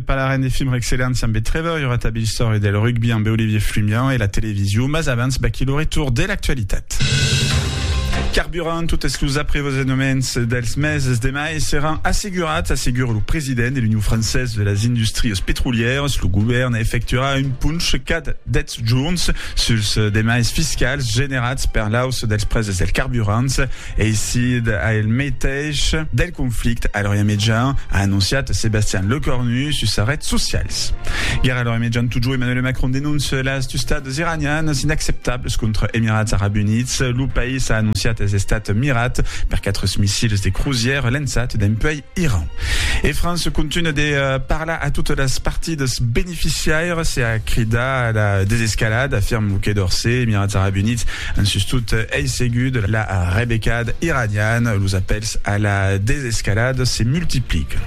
Parlarem de films excellents ambe Trevor, Iora Tabilstor e del rugbi ambe Olivier Flumian e la television, mas abans vaquí lo retour de l'actualitat. Carburant, totes los aprevosenoments dels meses de mai seràn assegurats, assegura lo president de l'Union Française de las Industries Petrolièras. Lo govèrn efectuarà un ponch cada 10 jorns suls demais fiscals generats per l'auç dels preses dels carburants. Eisid ail meteis del conflicte a l'Orient Mejan, a anonciat Sebastian Lecornu sus sas rets socials. Guèrra a l'Orient Mejan totjorn, Emmanuel Macron denóncia las tustats iranianas inacceptablas contra Emirats Arabs Units. Lo país a anonciat es estat mirat per 4 missils de crusièr lençats dempuèi Iran. E França continua de parlar a totes las partidas beneficiaires e a cridar a la desescalada, afirma lo Quai d'Orsay. Emirats Arabs Units an sustot ei seguit la rebecada iraniana. Los apèls a la desescalada se multiplican.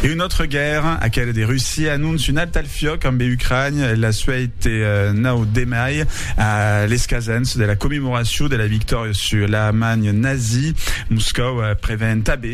E una autra guèrra, aquela de Russia, anonça un alt al fiòc ambe Ucrània la suèit 9 de mai, a l'escasens de la commemoracion de la victòria sus l'Alemanha nazi. Moscòu prevèn tanben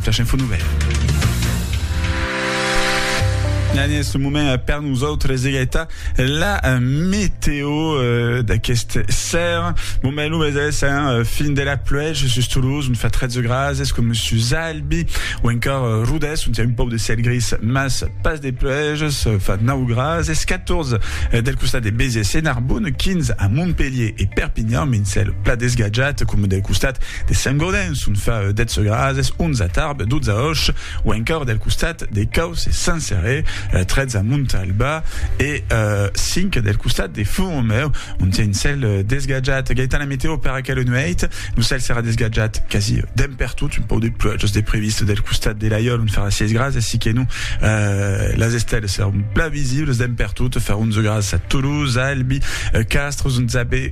Flash Info Nouvelles. En aguest moment per nosautres egaita la meteo d'aquest ser. Bon ben lo meses hein, fin de la pluèja sus Toulouse, on fa 13 grases com sus Albi ou encor Rodès on tien un pauc de ciel gris mas pas de pluèjas, fa 9 grases, 14 del costat de Béziers e Narbonne, 15 a Montpellier e Perpignan, un ciel plat desgatjat com del costat de Saint-Gaudens. Son fa dètz grases, onza tarb, dotza òch, o encòr del costat de Caus e Sansèrè, trètza Montalba e cinc del costat de Font-Romèu, ont siá un cèl desgatjat. Gaità la metèo per aquela nuèit, lo cèl serà desgatjat quasi dempertot, un pauc de pluèjas de previst del costat de Laiòl, ont farà sièis grases, siquenò las estèlas seràn plan visibles dempertot, farà onze grases a Tolós, Albi, Castres, ont s'abé.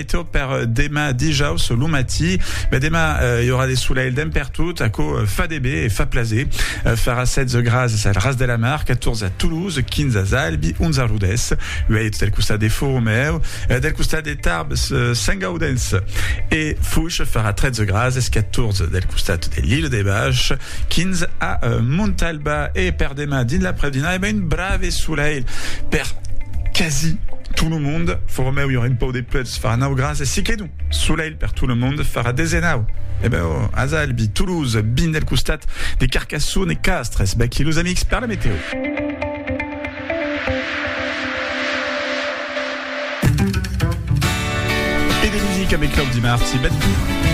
Meteor per demà dijaus lo matí. Be demà i aurà de solelh d'en pertot, aquò fa de bé e fa plaser. Farà 16 grases al Ras de la Mar, 14 a Toulouse, 15 a Zalbi, 11 a Rodés. Uèi del costat de Fòromèu, del costat de Tarbes, Sentgaudens e Foish farà 13 grases, 14 del costat de l'Ile de Bach. Quins a Montalba e per demà dins l'après-dinà e ben un brave solelh per quasi tot lo mond, for meu i aurà un pauc de plets farà 9 grads e si que non solelh per tot lo mond farà 19 e ben o as Albi, Toulouse, bin del costat de Carcasson e Castres bèc i los amics per la meteo. Camic Claudi Marti.